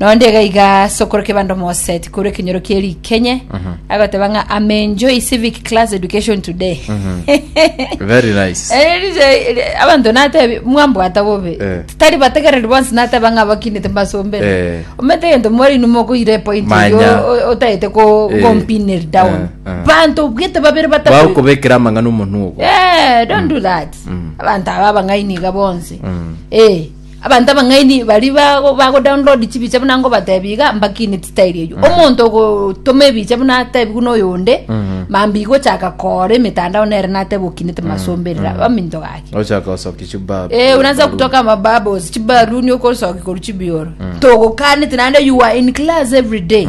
Na onde iga iga ase okorwa kebando Mose tikorwa ekenyoro kie rikenye agoteba ng'a I'm enjoy civic class education today Very nice. Eh, rije- ri- abanto natebi mwambwata bobe Eh. tari bategereri bonsi nateba ng'a abakinete mbasombere Eh. omete egento mwari inwe mokoira epoint Manya. erio o- otaete ko- Eh. kompineri down Eh, eh. banto bwete babere batatu Bagokobekera amang'ana omonwa ogo. Eh, don't do that Mm. abantu aba abang'aini iga bonsi Mm. Eh, Abanto abang'aini bari bago bagodownload chibicha buna ngobatebi iga mbakine style eyio omonto ogotoma ebicha buna atebiwe noyo onde mambia igochaka kora emetandao nere nateba okinete masomberera baminto gaki ochaka osoki chubabu Eh, unaanza kutoka mabubbles chibaruni okosoki koru chibioro togokanete naende you are in class every day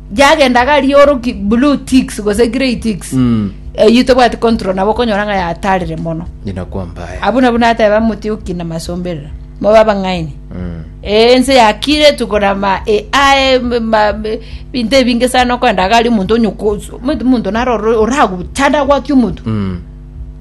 yagenda gari oroki blue ticks gose grey ticks Mm. eyio tobwati control nabo okonyora ng'a yatarire mono Nyina kwa mbaya. abwo nabwo nateba mote okina masomberera mobe abang'aini Mm. Eh, ense yakire tukona ma AI m- ma m- binto ebinge sana okwenda gari omonto onyokoso omonto naroro oraguchanda gwaki omonto Mm.